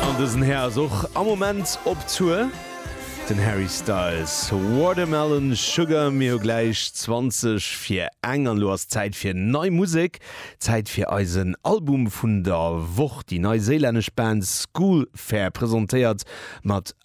An dësen Här ass och am Moment op Tour, den Harry Styles. Watermelon Sugar, mir hu gläich 20 fir eng an elo ass Zäit fir nei Musek, Zäit fir eisen Album vun der Woch. Déi neiséilännesch Band Schoolfair presentéiert mat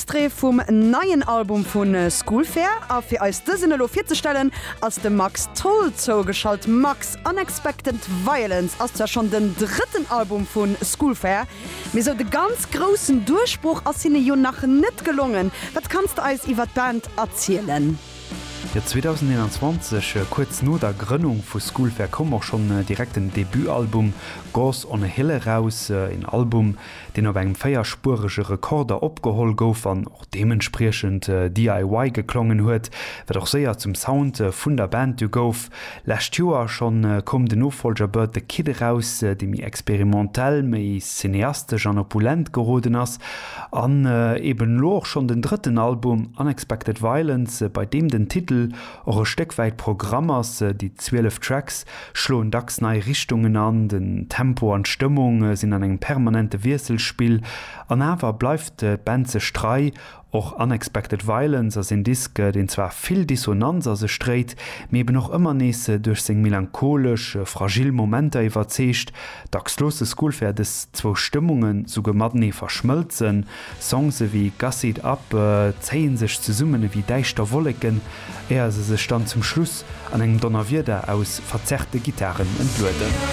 Extrait vum neien Album vu Schoolfair a fir eis dësen elo virzestellen ass de Max Tholl zougeschalt. Max, Unexpected Violence ass zwar schonn den drëtten Album vu Schoolfair, mee sou de ganz groussen Duerchbroch ass hinne jo nach net gelongen. Wat kanns de eis iwwer d'Band erzielen? Jo, 2021, kuerz no der Grënnung vu Schoolfair, koum och schonn direkt den Debutalbum Gods on a Hill eraus. Een Album, deen op engem véierspuerege Rekorder opgeholl gouf an och deementspriechend DIY geklongen huet, wat och séier zum Sound vun der Band du gouf. Lescht Joer schonn koum den Nofollger Bert the Kid eraus, dee méi experimentell, méi cineastesch an opulent geroden ass, an eben elo och schonn den drëtten Album Unexpected Violence, bei deem den Titel och e Stéck wäit Programm ass, déi 12 Tracks schloen dacks nei Richtungen an, den Tempo an d'Stëmmung sinn an engem permanente Wiesselspill, an awer bleift d'Band sech trei. Och Unexpected Violence ass een Disk, deen zwar vill Dissonanz a sech dréit, mee eben och ëmmer nees duerch seng melancholesch, fragil Momenter iwwerzeegt. Dacks loosse Schoolfair dës zwou Stëmmungen souguer matenee verschmëlzen. Songs ewéi Gussy it up zéie sech zesummen ewéi däischter Wolleken, éier se sech dann zum Schluss an engem Donnerwieder aus verzerrte Gittaren entlueden.